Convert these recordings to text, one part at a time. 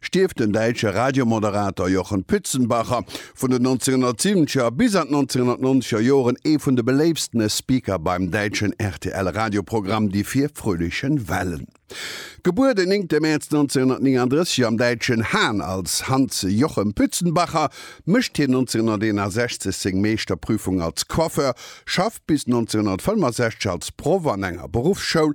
Stierft den däitsche Radiomoderator Jochen Pützenbacher, vun den 1970er bis an d'1990er Joren ee vun de beléiftstene Speaker beim däitschen RTL-Radioprogramm Die vier fröhlichen Wellen. Gebuer den 9 Mäerz 1939 am däitschen Hahn als Hans Jochen Pützenbacher, mécht hien 1961 seng Meeschterprüfung als Coiffeur, schafft bis 1965 als Proff an enger Beruffsschoul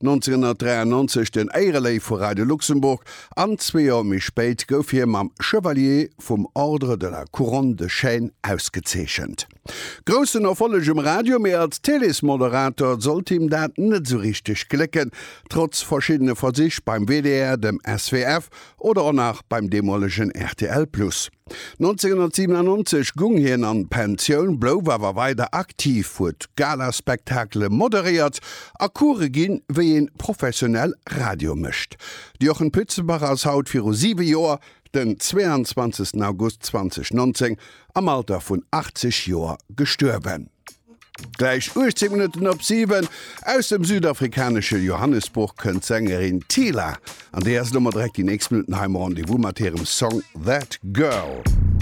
1993 den Éireléiw vu Radio Luxembourg an zwee Joer méi spéit gouf hie mam Chevalier vum Ordre de la Couronne de Chêne ausgezeechent. Groussen Erfolleg um Radio, mee als Télésmoderator sollt him dat net esou richteg glécken, trotz verschiddene Versich beim WDR, dem SWF oder och nach beim deemolegen rtl Plus. 1997 gung hien an d'Pensioun, blouf awer weider aktiv, huet Galaspektakele moderéiert a Coure ginn, wéi ee professionell Radio mécht. De Jochen Pützenbach ass haut viru 7 Joer, den 22 August 2019, am Alter vun 80 Joer gestuerwen. Gläich 18 Minutten op 7. Aus dem südafrikanesche Johannesburg kënnt d'Sängerin Teela an déi ass elo mer direkt déi nächst Minutten hei am Rendez-vous mat hirem Song That Girl.